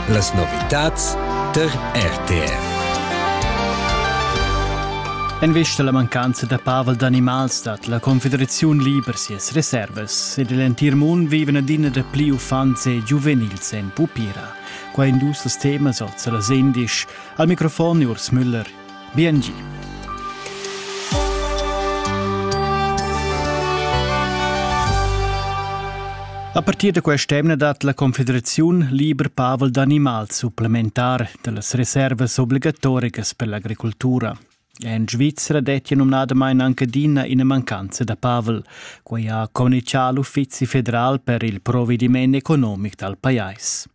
Las novitads tar RTR. En vista alla mancanza da pavel d'animals dat la Confederaziun liber sias reservas ed l'entir mund viven adina da pli uffants e giuvenils en pupira. Qua indus das temas oz las indisch. Al microfon Urs Müller. Biengi. A partir da quest'emna dat la Confederaziun liber pavel d'animals supplementar dallas reservas obligatoricas per l'agricultura. En Svizzera dettia numnadamain anche adina ina mancanza da pavel. Quai ha communizià l'Uffizi federal per il provediment economic dal pajais.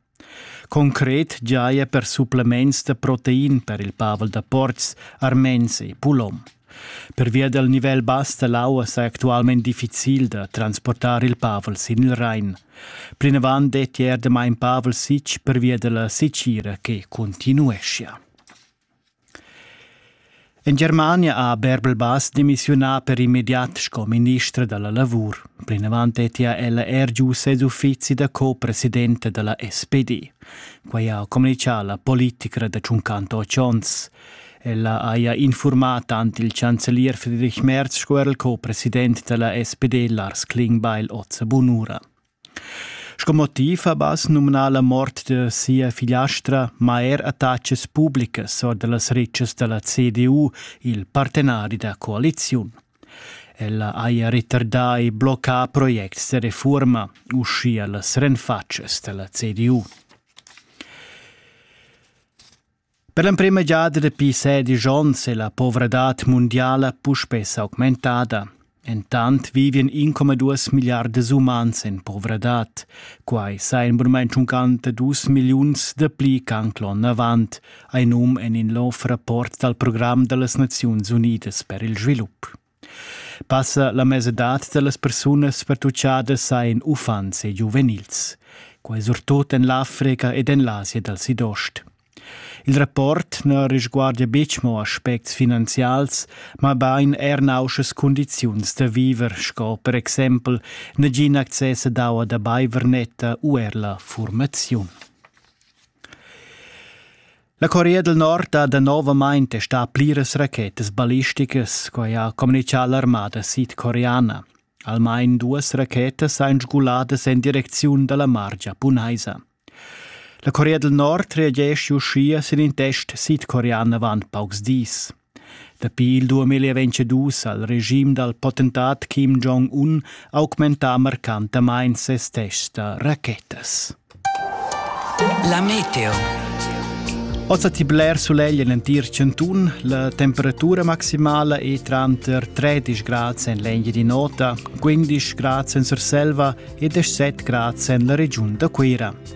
Concret giaja per supplements da protein per il pavel da portgs, armens e pulom. Pervia dal nivel bass da l'aua sa actualmain difficil da transportar il pavel sin il Rain. Plinavant dettia er damain pavel sitg pervia da la sitgira che continueschia. En Germania ha Bärbel-Bass demissiunà per immediat sco ministra da la lavur. Plinavant dettia ella er giu ses uffizi da co-presidenta da la SPD. Quai ha communitgà la politica da tschuncanto otg onns. Ella haja infurmà tant il chancelier Friedrich Merz sco er il co-president da la SPD Lars Klingbeil oz a bun'ura. Sco motiv ha Bass numnà la mort da sia figliastra ma er attachas publicas or da las ritschas da la CDU, il partenari da coaliziun. Ella haja retardà e bloccà projects da refurma, uschia las renfatschas da la CDU. Per l'emprema giada dapi sedisch onns è la povradad mundiala puspè s'augmentada. Entant vivian 1,2 milliardas umans en povradad. Quai sa in mument uncant da dus milliuns dapli ch'anc l'onn avant, ein um en in lov rapport dal program da las Naziuns Unidas per il svilup. Passa la mesadad da las persunas pertuchadas hajan uffants e giuvenils. Quai surtut en l'Africa ed en l'Asia dal Sidost. Il rapport na resguardia betg mo aspects finanzials, mabain er nauschas cundiziuns da viver sco per exempel nagin access ad aua da baiver netta u er la formaziun. La Corea del Nord ha danovamain testà pliras rachetas ballisticas, quai ha communitgà l'armada sidcoreana. Almain duas rachetas ein sguladas en direcziun dalla mar giapunaisa. La Corea del Nord reagesce uschia sin in test sidcorean avant paucs dis. Dapi il 2022 ha il regim dal potentat Kim Jong-un augmentà marcantamain ses tests da rachetas. La meteo. Ossa ti bler sulegl en entir Centun, la temperatura maximala è tranter 13 grad en l'Engia di Nota, 15 grad en Surselva e 17 grad en la regiun da Cuira.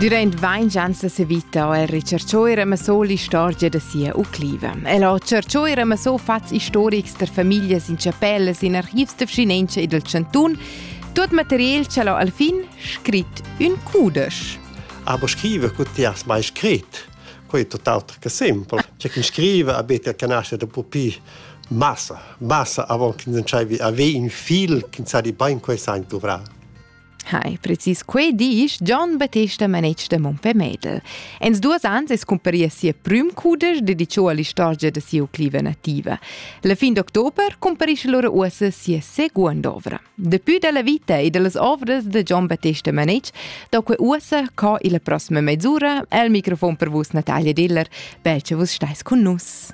Durant ventg ans a Sevita ha il ricerchair amassò l'istorgia da sia ucliva. El ha cerchair amassò fats istorics da famiglias in chapellas, in archivs da vschinenza e del chantun, tot material che ha al fin scrit ün cudesch. Aber scrive, Gott, hast mai scrit? Quei è tutt'altro che simpel. C'è chi scrive a bete che nasce dopo pi massa, massa avon che nsciaivi avere un fil che sa di bain quei sein dovrà. Hai, precis quei disch John Battesta manetsch da Montpelmädel. En duas ans es cumparia sia prüm cudesch dedichò all'istorgia da sia cliva nativa. La fin d'october cumparisce lora uossa sia seguond ovra. Dapi dalla vita e dallas ovras da Gian Battesta Manetsch do que ussa co illa prossima mezzura el microfon per vus Natalia Diller. Bel che vus stais con nus.